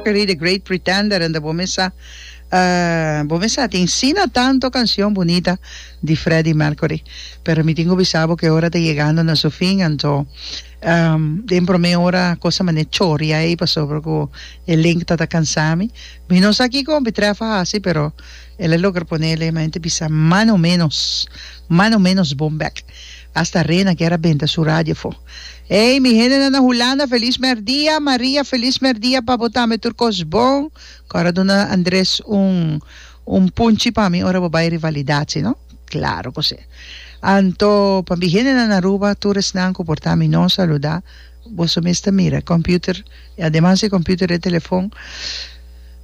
Carey The Great Pretender and bo mesa uh bo mesa tin sina tanto cancion bunita di Freddie Mercury pero mi tin cu bisa bo cu e ora ta yegando na su fin anto um den prome ora cosa manera choria ey pasobra cu e link ta ta cansa mi mi no sa kico mi tref a haci pero el a logra ponele mi a henter bisa mano menos mano menos bon bek. Hasta Rena ker a benta su radio fo. Ey mi hendenan na Hulanda feliz merdia Maria feliz merdia pa bo tambe tur kos bon ku ora duna Andres un un punchi pa mi ora bo bai rivalidad si no claro ku si anto pa mi hendenan Aruba tur esnan ku por ta mi no saluda. Boso mes ta mira e computer y ademas e computer e telefon.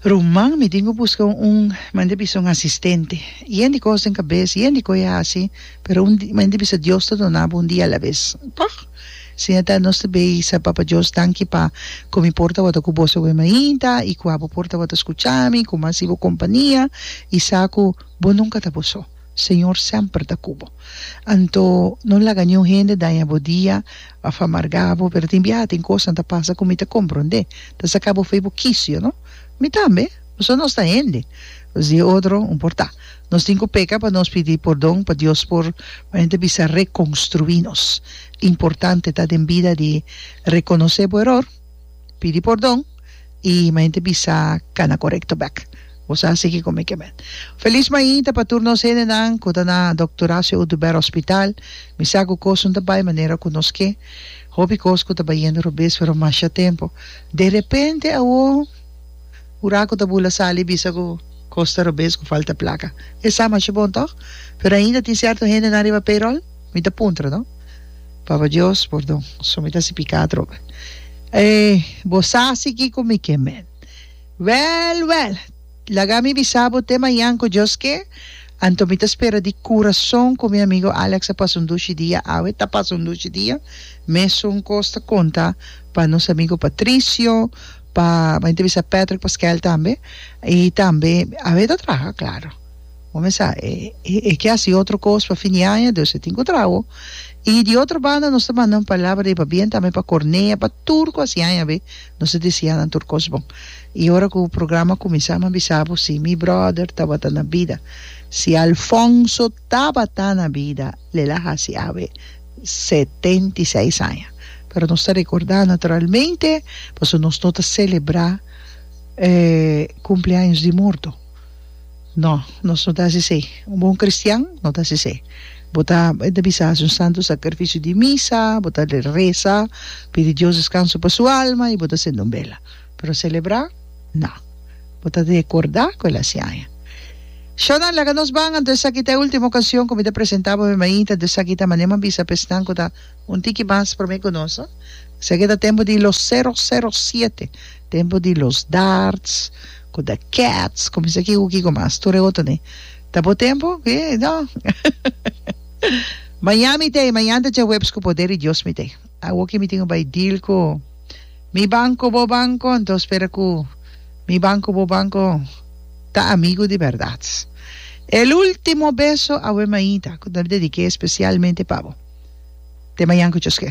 Ruman mi tin cu busca un mende bisa un asistente. Yen di cos den cabes, yen di coye haci, pero un di mende bisa Dios ta dona bo un dia alabes. Toch! Señor ta nos ta bay sa Papa Dios danki pa cu mi por tabata cu boso awe mainta y cu abo por tabata scucha mi cu mi haci bo compania y sa cu bo nunca ta bo so. Señor semper ta cu bo. Anto no laga niun hende daña bo dia. a fa margabo pero tin biaha tin cosnan ta pasa cu mi ta compronde ta saca bo fey bo kicio no mi tambe pasobra nos ta hende nos di e otro no por ta nos tin cu peca pa nos pidi pordon pa Dios por cu hende ta bisa reconstrui nos importante ta den bida di reconoce bo eror. pidi pordon y maente bisa cana corecto bek. Bo sa siki con mi kemet. Feliz mainta pa tur nos hendenan cu ta na Doctor Horacio Oduber Hospital. Mi sa cu cosun ta bay manera cu nos ke. Hopi cos cu ta bayendo robes pero masha tempo. De repente awor ura cu ta bula sali bisa cu cos ta robes cu falta placa. Esa masha bon toch? Pero ainda tin cierto hendenan riba payroll. Mi ta puntra, no? Papa Dios, pordon, so mi ta hasi piká atrobe. E bo sa si kiko mi ke mèn? Wèl, wèl, laga mi bisa bo te mañan ku Dios ke, anto mi ta spera di kurason ku mi amigu Alex a pasa un dushi dia awe, ta pasa un dushi dia. Mesun kos ta konta pa nos amigu Patricio, pa, mi ta bisa Patrick Paskel tambe, i tambe awe ta traha, klaro. Bo me sa, e ke hasi otro kos pa fin di aña, dus e tin ku traho. I di otro banda nos ta manda un palabra riba bien tambe pa Cornea, pa tur ku hasi aña be, nos ta desea nan tur kos bon. I ora ku programa kuminsá mi a bisa bo si mi bròder tabata na bida. Si Alfonso tabata na bida, l'el a hasi awe setenta i seis aña. Pero nos ta rekordá naturalmente, pasobra nos no ta selebrá kumpleaños di morto. No, nos no ta hasi esei. Un bon kristian no ta hasi esei. Bo ta, e ta bisa, hasi un santu sakrifisio di misa, bo ta resa, pidi Dios deskanso pa su alma i bo ta sende un bela. Pero selebrá? No. Bo ta rekordá ku el a hasi aña. Shó nan, laga nos ban, anto esaki ta e último okasion ku mi ta presentá bo mi mainta, anto esaki ta manera mi a bisa pa esnan ku ta un tiki mas promé ku nos. Esaki ta tempu di los seros, seros, siete, tempu di los darts. Cu ta cats cu mester kico kico mas tur e otro ni ta bo tempo ki no Mañan mi tey mañan ta djahuebs cu poder di Dios mi tey awo ki mi tin un bay deal cu mi banco bo banco enton spera cu mi banco bo banco ta amigo di berdad El ultimo beso awe maita cu ta dedique especialmente pa bo te mañan cu Dios ke.